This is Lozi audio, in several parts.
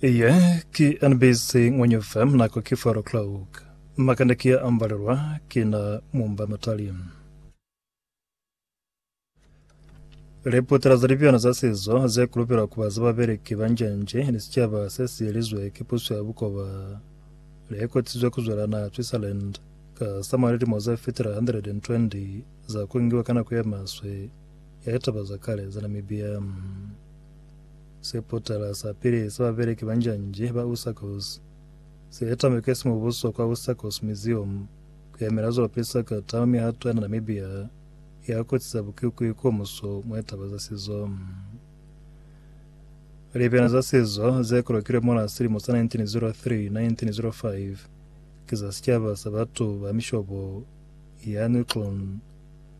Iye ki NBC Ngwenye FM nako ki 4 o'clock. Makande ki ya ambalelwa ki na mumba matali. Leputela za libyana za sizo ze kulupelwa kuba za babeleki ba njenje ni sicaba se si yelizwe ki puso ya bukoba le kotisizwe ku zwela naha Switzerland ka sa mwa lilimo ze fitela 120 za ku ngiwa ka nako ye maswe ya litaba za kale za Namibia. Se potala sa pili sa babeleki ba njanje ba Usakos se etambe ke simubuso kwa Usakos Museum ku yamela zwa lupisa ka tano mihato ya na Namibia ya kotsi za bukikwi ko muso mwa litaba za sizo. Libyana za sizo ze kolokilwe mola silimo sa 1903 1905 ke za sicaba sa batu ba mishobo ya Nuklon.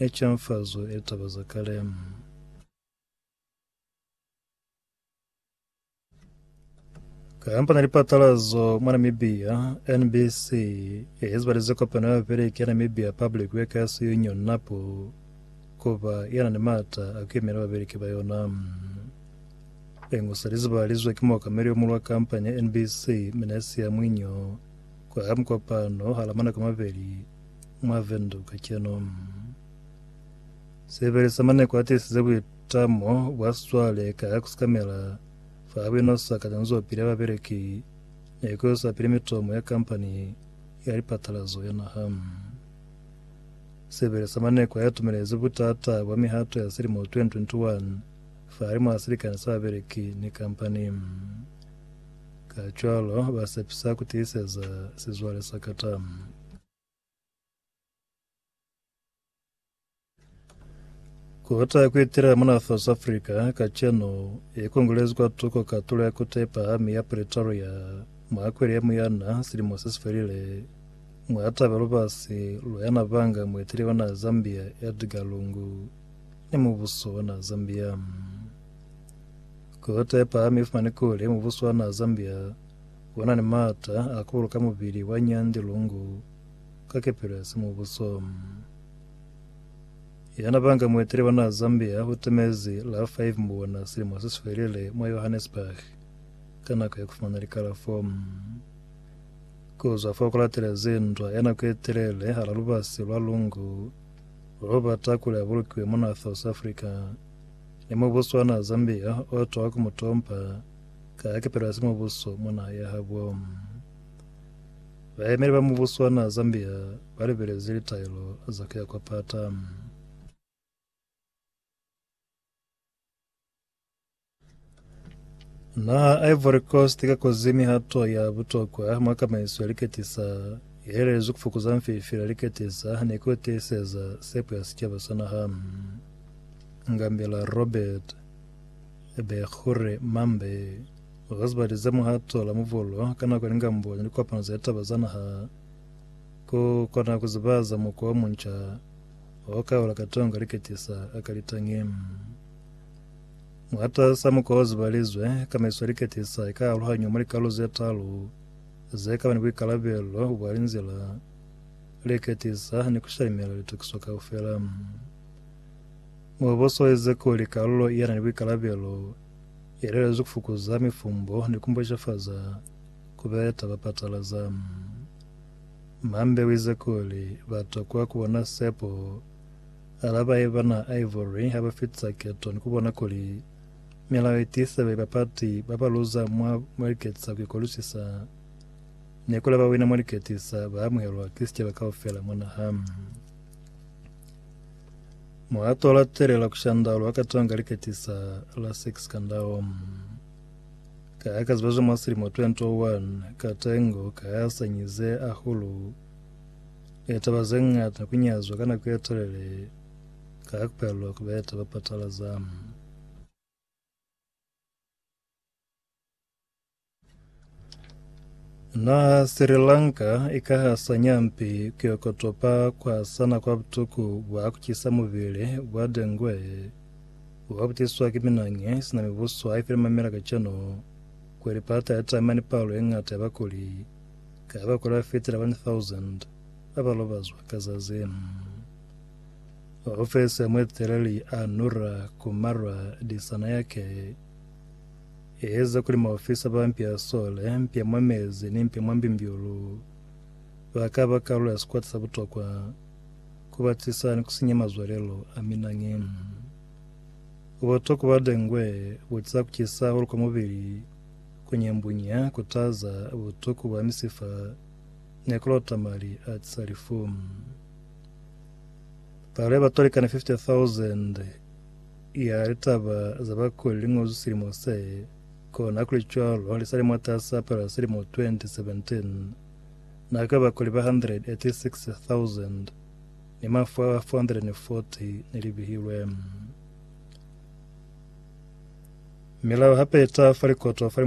Ne camfazwe e taba za kale Kamba na lipatalazo mwa Namibia, NBC e ezibalize kopano ya bapeleki ya Namibia Public Workers Union, NAPU, kuba ya na ni mata a ku yemela bapeleki ba yona. Liñwi se li zibalizwe ki muokameli yo mulwa kampani ya NBC, Minasia Mwinyo, kwa mukopano hala manako a mabeli Mwa Windhoek kacenu, Sebele sa Maneko a tiisize buitamo bwa sizwale ka ku sikamela fa bwino sa kacanzopili ya babeleki ni ku isa pili mitomo ya kampani ya lipatalazo ya naha. Sebele sa Maneko a itumelezi butata bwa mihato ya silimo 2021 fahalimw'a silikani sa babeleki ni kampani. Kacwalo, ba sepisa ku tiiseza sizwale sa kata. Kubata kuitila mona South Africa kacenu ikongolezi kwa tuko katulo ya kota ipahami ya Pretoria mwa Akwili ya muyana silimo sesifelile mwa taba lubasi lwa yana banga mueteli ona Zambia Edgar Lungu ni mubuso ona Zambia. Kota ipahami ifumani kuli mubuso ona Zambia Ku na ni maata a kuulu ka mubili wa Nyandi Lungu ka kepelo ya simubuso. Yana ba nga muetele wa naha Zambia u temezi la 5 Mbona silimo se si felile mwa Johannesburg ka nako ya ku fumana likalafo. Ku zwa fo ku latelezi ndwa ya nako ye telele hala lubasi lwa Lungu lwo bata kuli a bulukiwe mwa naha South Africa ni mubuso wa naha Zambia o twa ku mu tompa Ka kepelo ya simubuso mwa naha ya habo, bayemeli ba mubuso wa naha Zambia ba lebelezi litaelo za kuya kwa pata. Naha Ivory Coast ka kozi mihato ya butokwa mwa kamaiso ya liketisa ye helelezwi kufukuza mfifi la liketisa ni ku tiiseza sepo ya sicaba sa naha. Ngambela Robert. Haebe kure mambe ga zibali ze muhato la muvolo ka nako ni kambo ni likopano za litaba za naha, ku kona ku ziba za mukwa o munca wa ku kaula katongo ka liketisa a ka litangi. Mwatas'a mukwa o zibalizwe, kamaiso ya liketisa i ka aluhanywa mwa likalu ze talu ze ka ba ni buikalabelo bwa linzila, liketisa, ni ku shalimela litokiso kaufela. Mubuso wa Ezekiele ki kalulo ye na ni buikalabelo ye lelezwi ku fukuza mifumbo ni ku mboshafaza ku beta ba patalaza. Mambe wa Ezekiele ba tokwa ku bona sepo alaba ye bana Ivory ha ba fitisa keto ni ku bona kuli milao ye tiisa babe ba pati ba ba luza mwa mwa liketisa ku ikolusisa ni kuli ba ba wina mwa liketisa ba amuhelwa ki sicaba kaufela mwa naha. Muhato wa latelela ku shandalo wa katanga liketisa la sex kandaom. Ka ya ka ziba zwa mwa silimo 2001, Katengo ka ya sanyize ahulu e taba ze ngata ku nyazwa ka nako ye telele ka ya ku palelwa ku beta ba patalaza. Na Sri Lanka ikahasa nyampi kuyokotopa kwasana kwa butuku bwa kucisa mubili bwa dengue obabutiswa ki minangi sina mibuso haifile mamela kacenu kuli pata yatama ni palo yeñata ya bakuli ka bakuli bafitila 1,000 abalobazwa ka zazi. Ofesi ya mueteleli a Nura Kumara Dissanayake Eza kuli maofisa ba mpi a sole, mpi ya mwa mezi ni mpi ya mwa mbimbiulu ba ka ba kalulo ya sikwata sa butokwa ku batisa ni ku sinya mazwalelo a minangi. Buboto ku ba dengwe bo za ku cisa hahulu kwa mubili, ku nyambunya, ku taza, butuku bwa misifa, ni ku lota mali a tisa lifu. Palo ya batu ba likana 50,000 ya litaba za bakuli li ngozwi silimo se, kona hakulicwalo ha li sa li mwatasa palo ya silimo 2017, na ka bakuli ba 186,000 ni mafu a 440 ne li bihilwe. Milao hape i taha fa likoto fa li